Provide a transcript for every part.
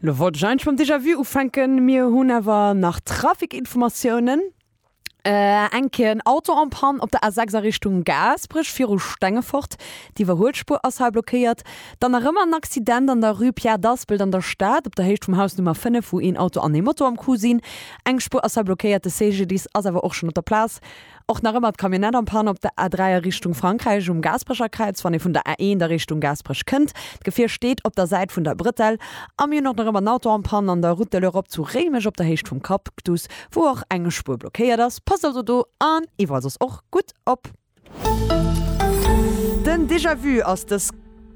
Lo wollt ech eigentlech mam Déjà Vu ufänken, mir hunn awer nach Trafikinformatiounen. Äh, eng Kéier en Auto en Panne op der A6 a Richtung Gaasperech viru Stengefort. D'Iwwerhuelspuer ass hei blockéiert. Dann nach ëmmer en Accident an der Rue Pierre d'Aspelt an der Stad, op der Héicht vum Haus Nummer 5, wou een Auto an ee Moto am Coup sinn. Eng Spuer ass hei blockéiert, de CGDIS ass awer och schonn op der Plaz. Och nach ëmmer d'Camionnette en panne op der A3 a Richtung Frankräich um Gaasperecherkräiz, wann ee vun der A1 a Richtung Gaasperech kënnt. D'Gefier steet op der Säit vun der Bretel. A mir hunn och nach ëmmer en Auto en panne an der Route de l'Europe zu Réimech op der Héicht vum Cactus, wou och eng Spuer blockéiert ass. Passt also do an iwwerall soss och gutt op. Den Déjà-vu ass dës.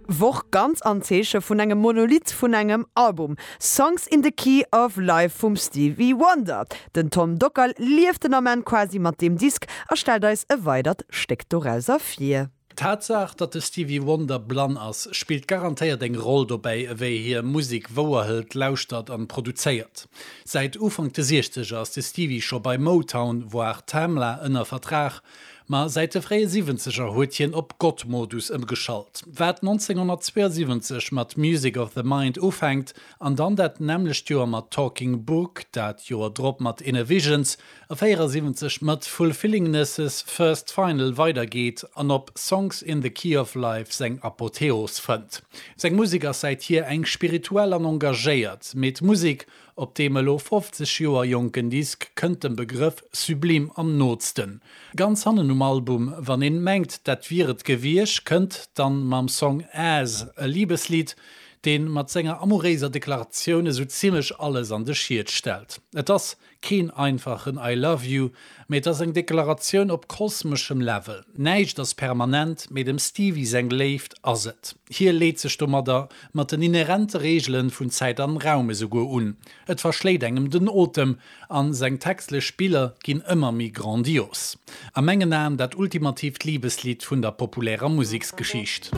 Woch ganz am Zeeche vun engem Monolith vun engem Album, Songs in the Key of Life vum Stevie Wonder. Den Tom Dockal lieft den Ament quasi mat deem Disk a stellt eis e weidert Stéck dorauser vir. D'Tatsaach, datt de Stevie Wonder blann ass, spillt garantéiert eng Roll dobäi, ewéi hie Musek wouerhëlt, lauschtert an produzéiert. Säit Ufank de Siechzeger ass de Stevie scho bei Motown, voire Tamla ënner Vertrag. Ma säit de fréie Siwwenzeger huet hien op Gott-Modus ëmgeschalt. Wat 1972 mat Music of the Mind ufänkt an dann dat nämmlecht Joer mat Talking Book, dat Joer drop mat Innervisions a 74 mat Fulfillingness' First Final weidergeet an op Songs in the Key of Life seng Apotheos fënnt. Seng Musek ass säithier eng spirituell an engagéiert, mee d'Musek Op deem elo 50 Joer jonken Disk kënnt dem Begrëff Sublime am nootsten. Ganz hannen um Album, wann een mengt dat wier et gewiesch, kënnt dann mam Song As, e Libeslidd, deen mat senger amouréiser Deklaratioun esou zimmlech alles an de Schied stellt. Et ass keen einfachen I love you, Mee et ass eng Deklaratioun op kosmeschem Level. Näischt ass permanent, mee dem Stevie seng Léift ass et. Hie leet sech domadder mat den inherente Reegelen vun Zäit an Raum esouguer un. Et verschléit engem den Otem an seng textlech Spiller ginn ëmmer méi grandios. A mengen Aen dat ultimatiivt Libeslidd vun der populärer Museksgeschicht.